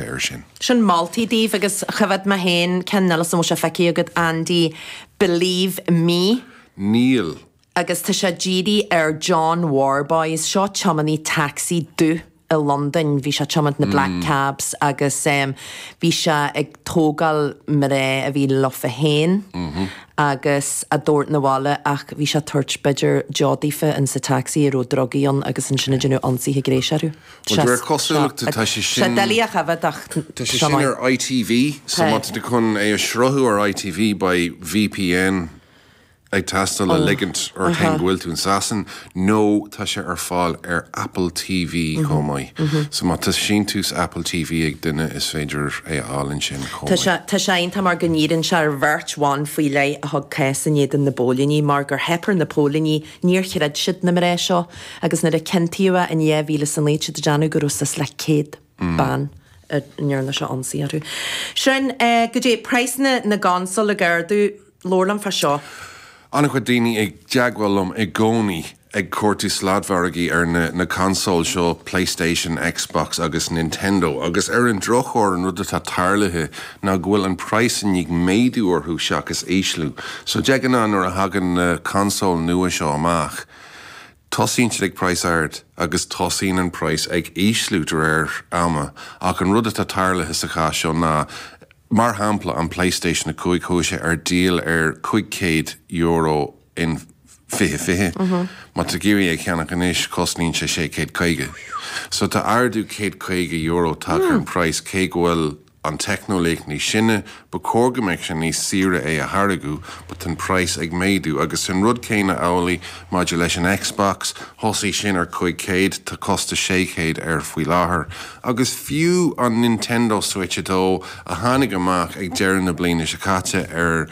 air sin. Sin moltaí daoibh agus choimhead mé féin ceann eile an bhfuil sé feicthe agat Andy Believe Me? Níl. agus tá sé dírithe ar John Worboys, seo tiománaí taxi dubh i Londain, bhí sé ag tiomáint na black cabs agus bhí sé ag tógáil mná a bhí leofa féin agus á dtabhairt na bhaile ach bhí sé ag tabhairt b'fhéidir deoch daofa insa taxi a raibh drugaí ann agus ansin ag déanamh ionsaithe gnéis orthu. Sea, doiligh a choimhead ach seo é. Tá sé sin ar ITV so má tá tú chun é a shruthú ar ITV beidh VPN ag teastáil le ligint ort féin go bhfuil tú in Sasain nó tá sé ar fáil ar Apple TV chomh maith so má tá síntiús Apple TV ag duine is féidir é a fháil ansin chomh maith. Tá sé iontach mar go ndíríonn sé ar bheirt bhan faoi leith a thug cás in éadan na bpóilíní mar gur theip ar na póilíní Níor chreid siad na mná seo agus nuair a ciontaíodh é in 2009 tá siad ag déanamh go raibh suas le céad bean a ndearna sé ionsaí orthu. Sin é go dtí praghsanna na gconsól ag ardú. Labhair liom fá seo. An-chuid daoine i dteagmháil liom i gcónaí ag cuartú sladmhargaí ar na na consóil seo, Playstation, Xbox agus Nintendo, agus ar an drochuair an rud atá tarlaithe, ná go bhfuil an praghas i ndiaidh méadú orthu seachas ísliú. So, de ghnáth, nuair a thagann na consóil nua seo amach, tosaíonn siad ag praghas ard agus tosaíonn an praghas ag ísliú de réir ama ach an rud atá tarlaithe sa chás seo ná, mar shampla, an Playstation 5, chuaigh sé ar díol ar €500 in 2020. Má tá tú ag iarraidh é a cheannach anois, cosnaíonn sé sé chéad caoga. So, tá ardú céad caoga euro tagtha ar an praghas cé go bhfuil an teicneolaíocht níos sine, ba chóir go mbeadh sé níos saoire é a tháirgeadh but tá an praghas ag méadú agus is an rud céanna amhlaidh maidir leis an Xbox, thosaigh sin ar 500, tá costas 600 air faoi láthair agus fiú an Nintendo Switch 2 a tháinig amach ag deireadh na bliana seo caite ar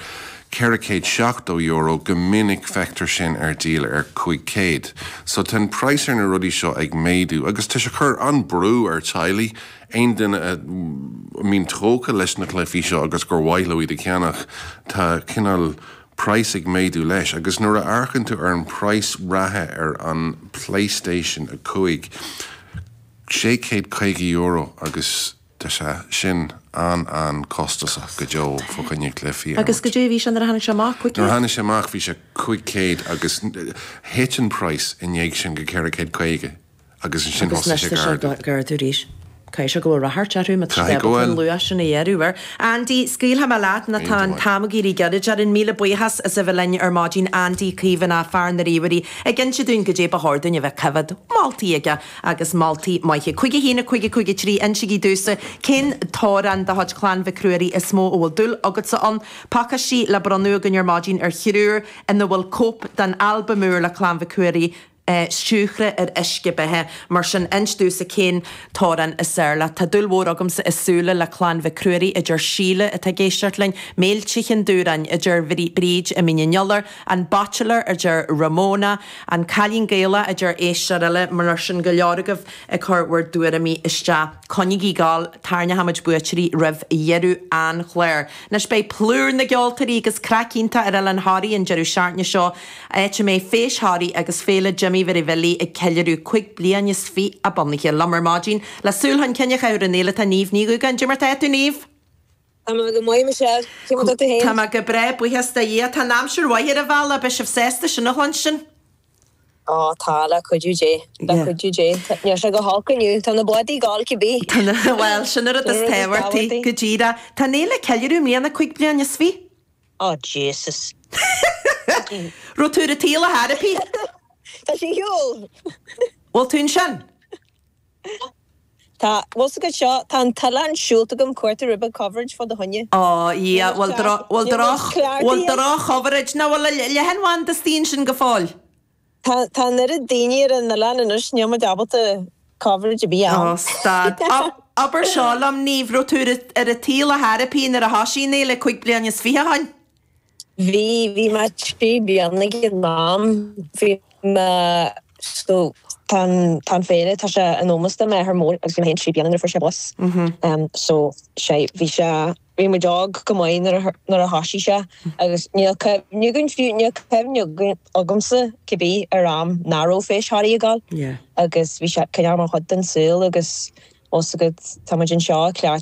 €470 go minic feictear sin ar díol ar 500 so tá an praghas ar na rudaí seo ag méadú agus tá sé ag cur an-brú ar teaghlaigh Aon duine a mbíonn tógtha leis na cluichí seo agus gur mhaith leo iad a cheannach, tá cineál praghas ag méadú leis agus nuair a amharcann tú ar an bpraghas reatha ar an Playstation 5, sé chéad caoga euro agus tá sé sin an-an-costasach go deo fá choinne cluichí ar Agus cad é a bhí sé nuair a tháinig sé amach, cúig chéad? Nuair a tháinig sé amach bhí sé cúig chéad agus thit an praghas i ndiaidh sin go ceithre chéad caoga. agus ansin thosaigh sé ag ardú. Caithfidh sé go bhfuil radharc air uaim, a Taisce, comh luath sin is a dheireadh, ar. Andy. Scaoilfidh mé leat nó tá an t-am ag éirí gairid. Déarfainn míle buíochas as a bheith linn ar maidin, Andy Caomhánach, fear na ríomhairí, ag inse dúinn caidé ba chóir dúinn a bheith a choimhéad. Moltaí aige, agus moltaí maithe. 51553, Insígí domhsa cén t-amhrán de chuid Chlann Mhic Ruairí is mó a bhfuil dúil agatsa ann. Pacáistí le bronnadh againn ar maidin ar thriúr ina bhfuil cóip den albam úr le Clann Mhic Ruairí, é Spioraid ar uisce beatha. Mar sin, insígí domhsa cén t-amhrán is fearr leat. Tá dúil mhór agamsa i Siúil le clann Mhic Ruairí, a deir Síle, atá ag éisteacht linn. Méilte Cheann Dubhráin, a deir Bríd, i Mín an Iolair. An Bachelor, a deir Ramona. An Cailín Gaelach, a deir éisteoir eile. Mar sin, go leor agaibh ag cur bhur dtuairimí isteach. Coinnigí ag gabháil, tarrnóchaidh muid buaiteoirí roimh dheireadh an chláir. Anois beidh plúr na gceoltóirí agus craic iontach ar Oileán Thoraí an deireadh seachtaine seo. Áit a mbeidh Feis Thoraí agus Féile Jimí Mhic Bhilí ag ceiliúradh cúig bliain is fiche a bunaithe, liom ar maidin le súil chun cinn a chur ar an fhéile tá Niamh Ní Dhugáin. Caidé mar atá tú, Niamh! Tá mé go maith, Michelle. Caidé mar atá tú féin? Tá mé go breá, buíochas do Dhia. Tá an aimsir mhaith ar an bhaile, beidh sibh sásta sin a chluinstin! Ó, tá, le cuidiú Dé. Yeah. Le cuidiú Dé. Tá- Níl sé go holc inniu. Tá na bádaí ag gabháil cibé. Tá na, bhuel, sin an rud is tábhachtaí. Sin an rud is tábhachtaí, go díreach. Tá an fhéile ag ceiliúradh i mbliana cúig bliain is fi. Oh Jesus. Raibh tú ar an tsaol ar chor ar bith. Tá sí ar shiúl. Bhfuil tú ansin? Tá, bhfuil 's agat seo? Tá an t-oileán siúlta agam ag cuartú ribe coverage fá do choinne. Oh Dhia, bhfuil droch, bhfuil droch, bhfuil droch-choverage, nó bhfuil leathanbhanda istigh ansin go fóill? Tá an oiread daoine ar an oileán anois, níl muid ábalta coverage ar bith a fháil. Oh, stad. Abair seo liom, Niamh, raibh tú ar an tsaol ar chor ar bith nuair a thoisigh an fhéile cúig bliana is fiche ó shin? Bhí, bhí mé trí bliana ag an am. Bhí mé, so tá an, tá an féile, tá sé in ómos do m'athair mór agus bhí mé féin trí bliana nuair a fuair sé bás. So sé, bhí sé. Bhí muid óg go maith nuair a thoisigh sé agus níl cuimhne againn, fiú níl cuimhne agamsa cibé ar am nach raibh Feis Thoraí ag gabháil agus bhí sé cineál mar chuid den saol agus tá fhios agat tá muid anseo ag